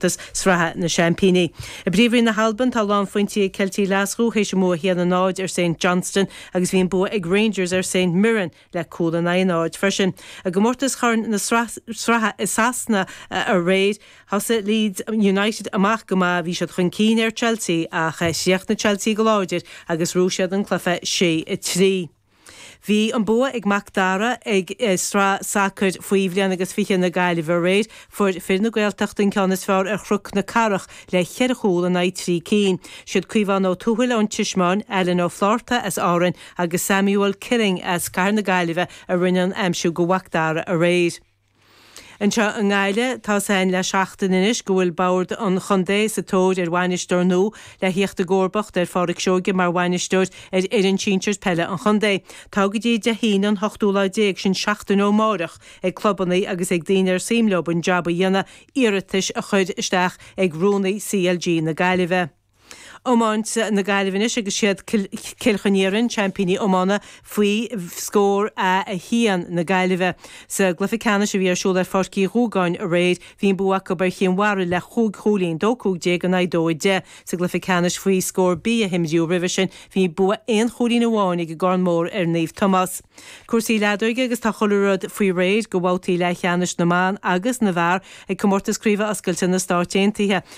gcomórtas Sraithe na Seaimpíní. I bPríomhroinn na hAlban, tá lánphointí ag Ceiltigh Ghlaschú théis a mbua 1-0 ar Saint Johnstone agus bhí an bua ag Rangers ar Saint Mirren le cúl in aghaidh a náid freisin. I gcomórtas Chorn na Sraithe i Sasana aréir, thosaigh Leeds United amach go maith, bhí siad chun cinn ar Chelsea ach chríochnaigh Chelsea go láidir agus rug siad leo an cluiche 6-3. Bhí an bua ag Mac Dara i sraith sacair faoi bhliain agus fiche na Gaillimhe aréir. Fuair fir na Gaeltachta an ceann is fearr ar Chnoc na Cathrach le cheithre chúl in aghaidh trí cinn. Siad Caomhán Ó Tuathail ón Tismeáin, Alan Ó Flaithearta as Árainn agus Samuel Killing as Cathair na Gaillimhe a rinne an aimsiú do Mhac Dara aréir. Anseo i nGaillimh, tá sé le seachtain anois go bhfuil Bord an Chontae sa tóir ar bhainisteoir nua le theacht i gcomharbacht ar Phádraic Seoige mar bhainisteoir ar fhoireann sinsear peile an chontae. Tá go dtí Dé hAoine an hochtú lá déag, sin seachtain ó amárach, ag clubanna agus ag daoine ar suim leo an jab a dhéanamh iarratais a chur isteach ag Rúnaí CLG na Gaillimhe. Iomáint na Gaillimhe anois agus siad Cill Chon Iarainn, seaimpíní iomána faoi scór A 1 na Gaillimhe. Sa gcluiche ceannais a bhí ar siúl ar Pháirc Uí Dhúgáin aréir, bhí an bua acu ar Chinn Mhara le chúig chúilín, 2 15 in aghaidh 2 10. Sa gcluiche ceannais faoi scór B a himríodh roimhe sin, bhí an bua aon chúilín amháin ag an gCarn Mór ar Naomh Tomás. Cúrsaí leadóige agus tá chuile rud faoi réir do bhabhtaí leathcheannais na mban agus na bhfear ag Comórtas Craoibhe Oscailte na Stát Aontaithe.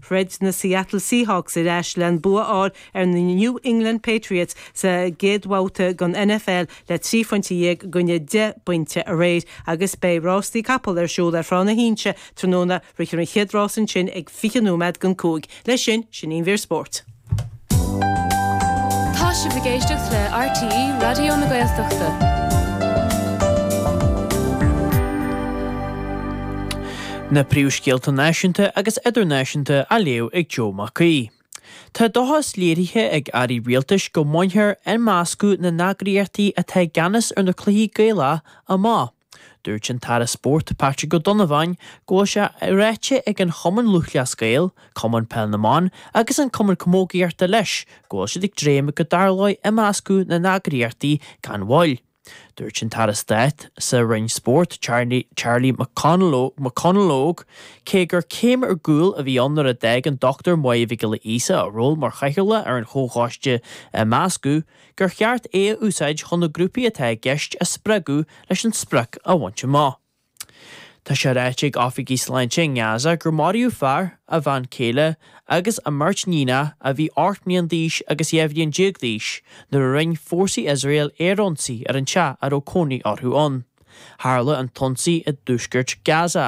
Throid na Seattle Seahawks ar ais le an bua a fháil ar na New England Patriots sa gcéad bhabhta den NFL le trí phointe dhéag i gcoinne deich bpointe aréir agus beidh rástaí capall ar siúl ar Thrá na hInse tráthnóna. Rithfear an chéad rás ansin ag fiche nóiméad don cúig. Leis sin, sin an mhír spóirt. Tá sibh ag éisteacht le RTÉ Raidió na Gaeltachta. Na príomhscéalta náisiúnta agus idirnáisiúnta á léamh ag Joe Mac Aoidh. Tá dóchas léirithe ag airí rialtais go mbainfear imeascadh na n-eagraíochtaí atá i gceannas ar na cluichí Gaelacha amach. Dúirt an tAire Spóirt Patrick Ó Donnabháin go bhfuil sé ráite ag an Chumann Lúthchleas Gael, Cumann Peil na mBan agus an Cumann Camógaíochta leis go bhfuil siad ag dréim go dtarlóidh imeascadh na n-eagraíochtaí gan mhoill. Dúirt an tAire Stáit sa Roinn Spóirt Charlie McConalogue cé gur céim ar gcúl a bhí ann nuair a d'fhág an Dr Máire Mhic Giolla Íosa a ról mar chathaoirleach ar an chomhchoiste imeasctha gur cheart é a úsáid chun na grúpaí atá i gceist a spreagadh leis an sprioc a bhaint amach. Tá sé ráite ag oifigigh sláinte i nGaza gur maraíodh fear, a bhean chéile agus a mbeirt níonacha a bhí 8 mbliana d'aois agus 12 bhliain d'aois nuair a rinne fórsaí Iosrael aerionsaí ar an teach a raibh cónaí orthu ann. Tharla an t-ionsaí i dtuaisceart Gaza.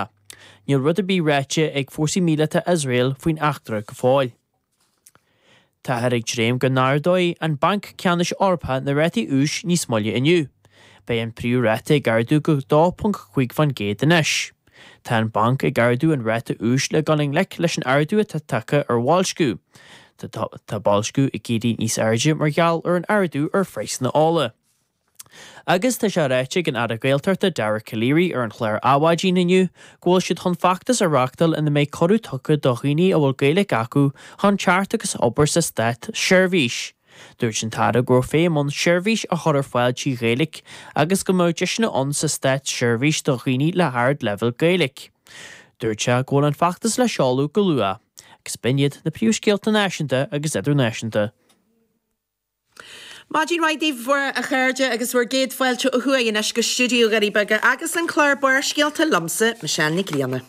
Níl rud ar bith ráite ag fórsaí míleata Iosrael faoin eachtra go fóill. Táthar ag dréim go n-ardóidh an Banc Ceannais Eorpach na rátaí úis níos moille inniu. Beidh an príomh ráta ag ardú go 2.5 faoin gcéad anois. Tá an banc ag ardú an ráta úis le dul i ngleic leis an ardú atá tagtha ar bhoilsciú. Tá boilsciú ag éirí níos airde mar gheall ar an ardú ar phraghsanna ola. Agus tá sé ráite ag an Aire Gaeltachta Dara Calleary ar an chlár Adhmhaidin inniu go bhfuil siad chun feachtas a reachtáil ina mbeidh cuireadh tugtha do dhaoine a bhfuil Gaeilge acu chun teacht agus obair sa Stát Sheirbhís. Dúirt an tAire go raibh feidhm ann seirbhísí a chur ar fáil trí Ghaeilge agus go mbeadh deiseanna ann sa Stát Sheirbhís do dhaoine le hard leibhéal Gaeilge. Dúirt sé go bhfuil an feachtas le seoladh go luath. Agus b'in iad na príomhscéalta náisiúnta agus idirnáisiúnta. Maidin mhaith daoibh a chairde agus bhur gcéad fáilte ó thuaidh anois go Stiúideo Dhoirí Beaga agus an clár Barrscéalta liomsa, Michelle Nic Grianna.